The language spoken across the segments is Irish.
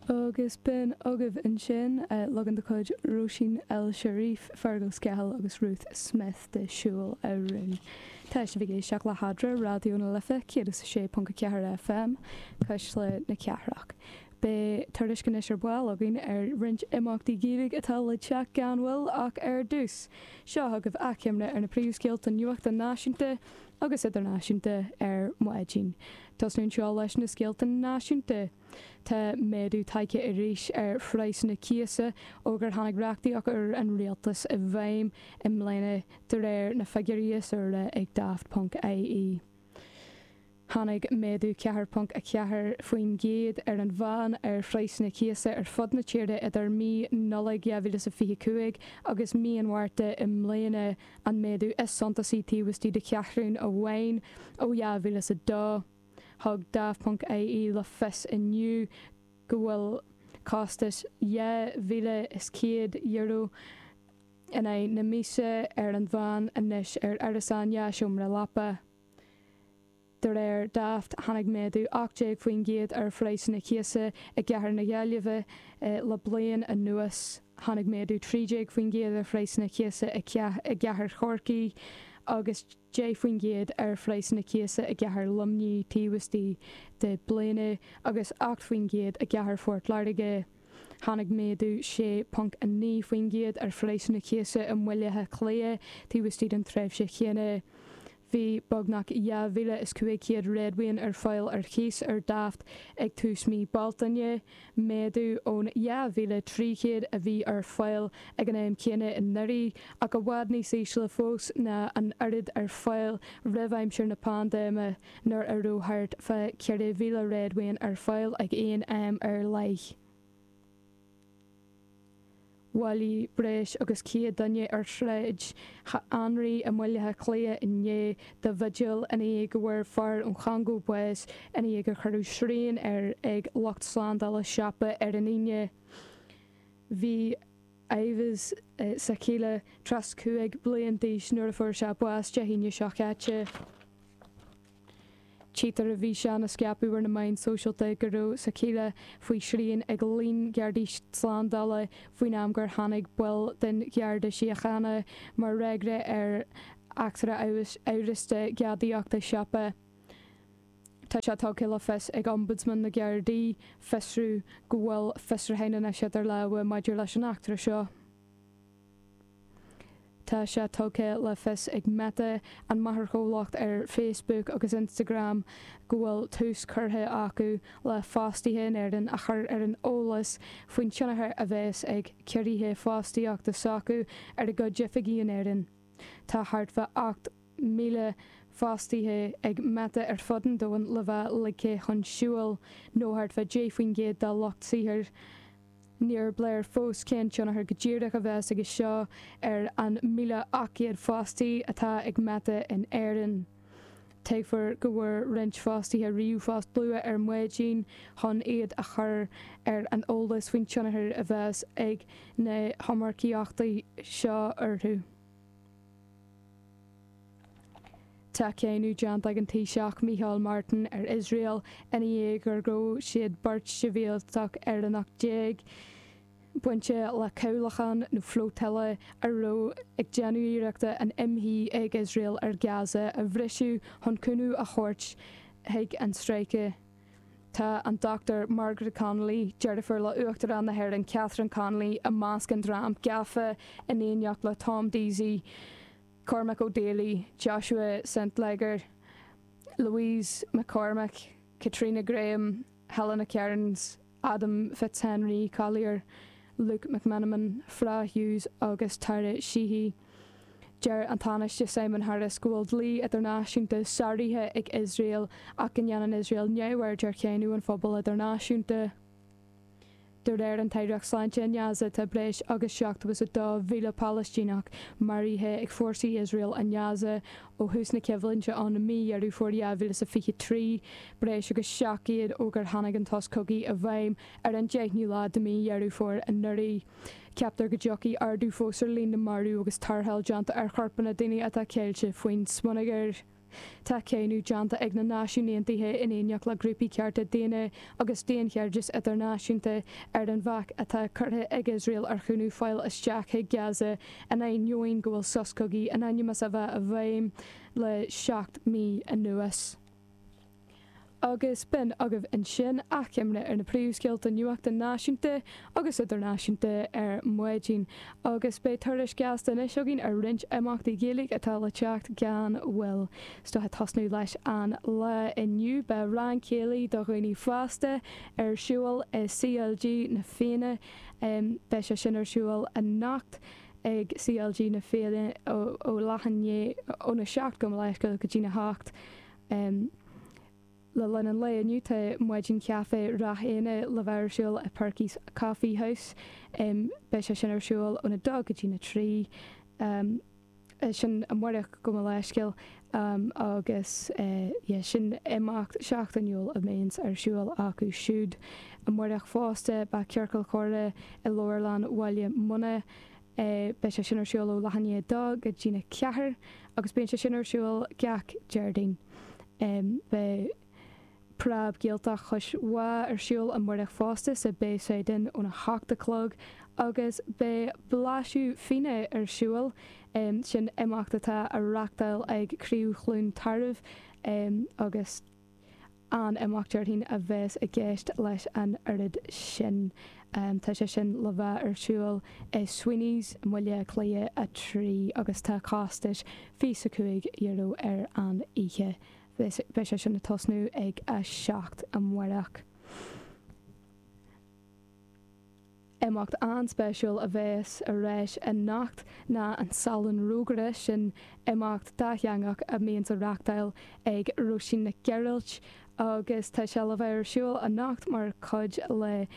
Agus b'in agaibh ansin leagan de chuid Róisín El Cherif, Fergal Scahill agus Ruth Smith de 'Siúil a Rún' Tá sibh ag éisteacht le hEadra, Raidió na Life 106.4 FM, Cuisle na Cathrach. Beidh tuairisc anois ar ball againn ar roinnt imeachtaí Gaeilge atá le teacht gan mhoill ach ar dtús, seo agaibh achoimre ar na príomhscéalta nuachta náisiúnta, agus idirnáisiúnta ar maidin. Tosnú anseo leis na scéalta náisiúnta. Tá méadú tagtha arís ar phraghsanna cíosa ó gur tháinig reachtaíocht úr an rialtais i bhfeidhm i mbliana, de réir na figiúirí is úire ag Daft ponc IE. Tháinig méadú 4.4% ar an mheán ar phraghsanna cíosa ar fud na tíre idir mí Nollag 2025 agus mí an Mhárta i mbliana, an méadú is suntasaí taobh istigh de cheathrún amháin ó 2002. Thug Daft.ie le fios inniu go bhfuil costas €2,100 in aghaidh na míosa ar an mheán anois ar árasán dhá sheomra leapa. De réir Daft, tháinig méadú 18% ar phraghsanna cíosa i gcathair na Gaillimhe le bliain anuas, tháinig méadú 13% ar phraghsanna cíosa i gcathair Chorcaí agus 10% ar phraghsanna cíosa i gcathair Luimnigh taobh istigh de bliana agus 8% i gcathair Phort Láirge, tháinig méadú 6.9% ar phraghsanna cíosa i mBaile Átha Cliath taobh istigh den tréimhse chéanna. Bhí beagnach 2,500 réadmhaoin ar fáil ar chíos ar Daft ag tús mhí Bealtaine, méadú ón 2,300 a bhí ar fáil ag an am céanna anuraidh, ach i bhfad níos ísle fós ná an oiread ar fáil roimh aimsir na paindéime, nuair a raibh thart fá 4,000 réadmhaoin ar fáil ag aon am ar leith. bhailí breis agus céad duine ar Shráid Anraí i mBaile Átha Cliath inné do bhigil ina dhiaidh go bhfuair fear ón Chongó bás ina dhiaidh gur cuireadh srian air ag lucht slándála siopa ar an Aoine. Bhí Yves Sakila 35 bliain d'aois nuair a fuair sé bás Dé hAoine seo chaite. Tchítear i bhfíseán a scaipeadh ar na meáin sóisialta go raibh Sakila faoi shrian ag líon Gardaí Slándála faoin am gur tháinig baill den Gharda Síochána mar fhreagra ar eachtra amhrasta gadaíochta siopa. Tá sé tugtha le fios ag Ombudsman na nGardaí, Fiosrú, go bhfuil fiosrúchán anois idir lámha maidir leis an eachtra seo. Tá sé tugtha le fios ag Meta, an máthairchomhlacht ar Facebook agus Instagram, go bhfuil tús curtha acu le fostaithe in Éirinn a chur ar an eolas faoin tionchar a bheas ag ciorruithe fostaíochta s'acu ar a gcuid oifigí in Éirinn. Tá thart fá 8 míle fostaithe ag Meta ar fud an domhain le bheith ligthe chun siúil, nó thart fá 10 faoin gcéad dá lucht saothair. Níorb léir fós cén tionchar go díreach a bheas aige seo ar an míle ocht gcéad fostaí atá ag Meta in Éirinn. Tuigtear go bhfuair roinnt fostaithe ríomhphost luath ar maidin chun iad a chur ar an eolas faoin tionchar a bheas ag na hiomarcaíochtaí seo orthu. Tá cáineadh déanta ag an Taoiseach Micheál Martin ar Iosrael ina dhiaidh gur ghabh siad beirt shibhialtach Éireannach déag bainte le cabhlachán nó flotilla a raibh ag déanamh iarrachta an imshuí ag Iosrael ar Gaza a bhriseadh chun cúnamh a thabhairt chuig an Stráice. Tá an Dr Margaret Connolly, deirfiúr le hUachtarán na hÉireann Catherine Connolly, i measc an dream gafa in éineacht le Tom Deasy, Cormac O'Daly, Joshua St Leger, Louise McCormack, Caitríona Graham, Helena Kearns, Adam Fitzhenry Collier, Luke McMenamin, Fra Hughes agus Tara Sheehy. Deir an Tánaiste Simon Harris go bhfuil dlí idirnáisiúnta sáraithe ag Iosrael ach go ndéanann Iosrael neamhaird ar cháineadh an phobail idirnáisiúnta. De réir an tAireacht Sláinte in Gaza tá breis agus 72,000 Palaistíneach maraithe ag fórsaí Iosrael in Gaza Ó thús na coimhlinte i mí Dheireadh Fómhair 2023, breis agus seacht gcéad ó gur tháinig an sos cogaidh i bhfeidhm ar an deichniú lá de mhí Dheireadh Fómhair anuraidh, ceaptar go dtiocfaidh ardú fós ar líon na marbh agus tarrtháil déanta ar chorpanna daoine atá ceilte faoin smionagar. Tá cáineadh déanta ag na Náisiúin Aontaithe in éineacht le grúpaí cearta daonna agus daonchairdis idirnáisiúnta ar an bhac atá curtha ag Iosrael ar chúnamh fáil isteach chuig Gaza, in ainneoin go bhfuil sos cogaidh in ainm is a bheith i bhfeidhm le seacht mí anuas. Agus b'in agaibh ansin achoimre ar na príomhscéalta nuachta náisiúnta agus idirnáisiúnta ar maidin, agus beidh tuairisc gheasta anois againn ar roinnt imeachtaí Gaeilge atá le teacht gan mhoill. So ag tosnú leis an lá inniu, beidh rang céilí do dhaoine fásta ar siúl i CLG Na Fianna, Beidh sé sin ar siúl anocht ag CLG na Féile ó leath i ndiaidh óna seacht gabh mo leithscéal go dtína hocht. Le linn an lae inniu tá Maidin Chaife Ráth Eanaigh le bheith ar siúl i Perky's Coffee House. Beidh sé sin ar siúl óna dó go dtína trí. sin amárach gabh mo leithscéal agus yeah sin imeacht seachtainiúil a mbíonns ar siúl acu siúd amárach fosta beidh Ciorcal Comhrá i Leabharlann Bhaile Munna beidh sé sin ar siúl ó leath i ndiaidh a dó go dtína ceathair agus bíonn sé sin ar siúl gach Déardaoin beidh Preab Gaeltacht Chois Bá ar siúl amárach fosta sa Bayside Inn óna 8 a chlog agus beidh Blaiseadh Fíona ar siúl, sin imeacht atá á reáchtáil ag Craobh Chluain Tarbh agus an-imeacht déarfainn a bheas i gceist leis an oiread sin. Tá sé sin le bheith ar siúl i Sweeney's i mBaile Átha Cliath 3 agus tá costas fiche is cúig euro ar an oíche beidh sé sin ag tosnú ag a seacht amáireach. Imeacht an-spéisiúil a bhéas ar ais anocht ná an Salon Rógaire, sin imeacht dátheangach a mbíonns á reáchtáil ag Róisín Nic Ghearailt agus tá sé le bheith ar siúl anocht mar chuid le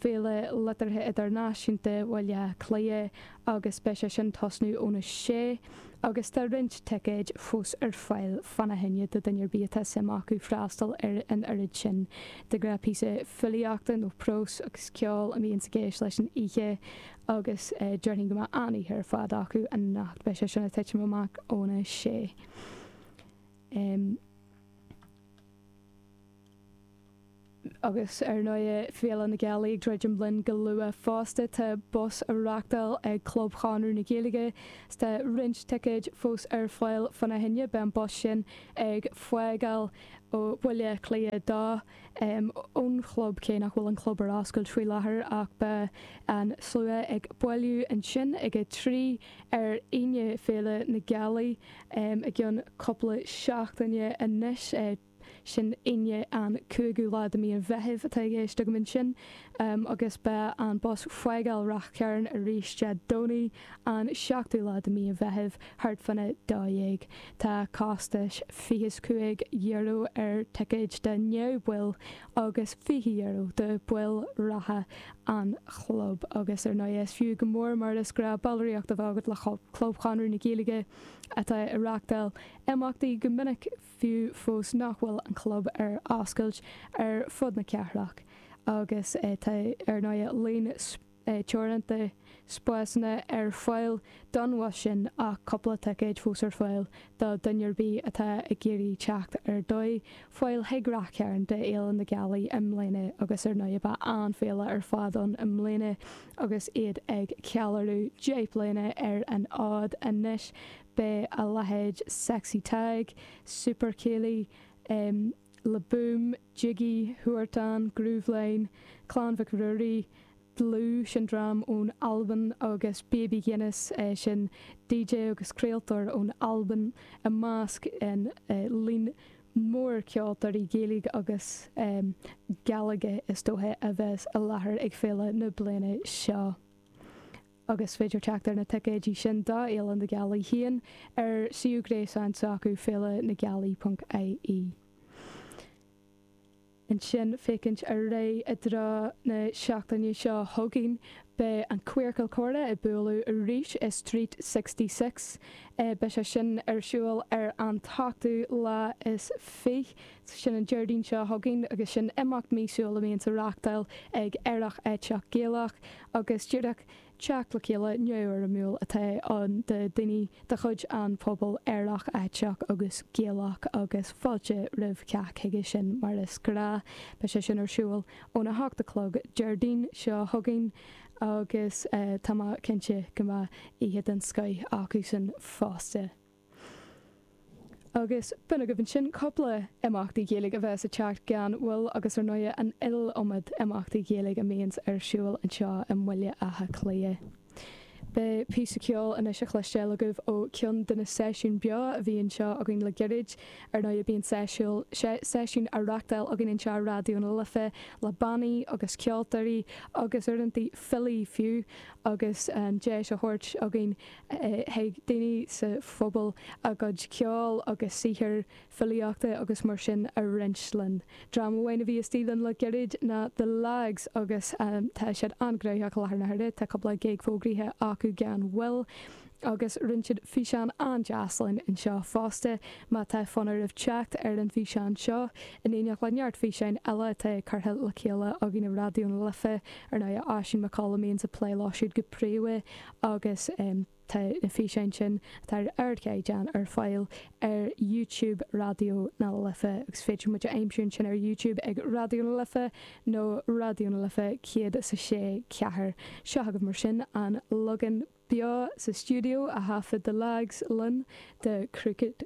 Féile Liteartha Idirnáisiúnta Bhaile Átha Cliath agus beidh sé sin ag tosnú óna 6 agus tá roinnt ticéid fós ar fáil fána choinne do dhuine ar bith atá suim acu freastal ar an oiread sin de ghnáth píosa filíochta nó prós agus ceol a mbíonns i gceist leis an oíche agus déarfainn go mbeidh an-oíche ar fad acu anocht beidh sé sin ag titim amach óna 6. Agus, ar ndóigh, Féile na Gealaí ag druidim linn go luath fosta, tá bus á reáchtáil ag Club Chonradh na Gaeilge agus tá roinnt ticéid fós ar fáil fána choinne. Beidh an bus sin ag fágáil ó Bhaile Átha Cliath 2 ón chlub, cé nach bhfuil an club ar oscailt faoi láthair, ach beidh an slua ag bailiú ansin ag a trí ar Aoine, Féile na Gealaí, i gceann cúpla seachtaine anois. sin Aoine an cúigiú lá de mí an Mheithimh atá i gceist agam ansin agus beidh an bus ag fágáil Ráth Chairn arís Dé Domhnaigh an seachtú lá de mí an Mheithimh thart fána dó dhéag. Tá costas fiche is cúig euro ar ticéid do neamhbhaill agus fiche euro do baill reatha an chlub agus ar ndóigh is fiú go mór mar is gnáth ballraíocht a bheith agat le Club Chonradh na Gaeilge atá ag reáchtáil imeachtaí go minic fiú fós nach bhfuil an Club ar oscailt ar fud na cathrach agus tá, ar ndóigh, líon teoranta spásanna ar fáil don bhus sin ach cúpla ticéad fós ar fáil do dhuine ar bith atá ag iarraidh teacht ar dóigh a fháil chuig Rath Chairn do Fhéile na Gealaí i mbliana agus, ar ndóigh, beidh an-fhéile ar fad ann i mbliana agus iad ag ceiliúradh 10 bliana ar an fhód anois. Beidh a leithéid Sexy Tadhg, Super Céilí, Le Boom, Jiggy, Huartán, Grooveline, Clann Mhic Ruairí, Dlúth, sin dream ón Albain, agus Baby Guinness, sin DJ agus craoltóir ón Albain, i measc an líon mór ceoltóirí Gaeilge agus Gàidhlige is dóigh a bheas i láthair ag féile na bliana seo. agus is féidir teacht ar na ticéidí sin do Fhéile na Gealaí féin ar suíomh gréasáin s'acu, féilenagealaí.ie. Ansin, féachaint ar aghaidh i dtreo na seachtaine seo chugainn, beidh an Queercal Comhrá ag bualadh arís i Street Sixty Six. Beidh sé sin ar siúl ar an t-ochtú lá is fiche, sin an Déardaoin seo chugainn, agus sin imeacht míosúil a bhíonns á reachtáil ag Aerach Aiteach Gaelach, agus díreach teacht le chéile neamhfhoirmiúil atá ann do dhaoine de chuid an phobail Aerach, Aiteach agus Gaelach agus fáilte roimh chách chuige sin mar is gnáth. Beidh sé sin ar siúl óna hocht a chlog Déardaoin seo chugainn agus tá mé cinnte go mbeidh oíche den scoith acusan fosta. Agus b'in agaibh ansin cúpla imeacht Gaeilge a bheas ag teacht gan mhoill agus ar ndóigh an iliomad imeachtaí Gaeilge a bhíonns ar siúl anseo i mBaile Átha Cliath. Beidh píosa ceoil anois á chloisteáil agaibh ó cheann de na seisiúin beo a bhí anseo againn le gairid. Ar ndóigh bíonn seisiúil, seisiúin á reachtáil againn anseo ar Raidió na Life le bannaí agus ceoltóirí agus uaireantaí filí fiú agus an deis á thabhairt againn Chuig daoine sa phobal a gcuid ceoil agus saothair filíochta agus mar sin a roinnt linn. Dream amháin a bhí istigh linn le gairid ná The Lags agus tá siad an-ghnóthach i láthair na huaire, tá cúpla gig fógraithe acu gan mhoill agus roinn siad físeán an-deas linn anseo fosta. Má tá fonn oraibh teacht ar an bhfíseán seo, in éineacht le neart físeáin eile atá curtha le chéile againn i Raidió na Life, ar ndóigh, Oisín Mac Colla a bhíonns ag plé leo siúd go príomha, agus tá na físeáin sin atá ar ardchaighdeán ar fáil ar YouTube Raidió na Life agus féidir muid a aimsiú ansin ar YouTube ag Raidió na Life nó Raidió na Life céad is a sé ceathair. Seo agaibh mar sin an leagan beo sa stiúideo a thaifead The Lags linn de Crooked.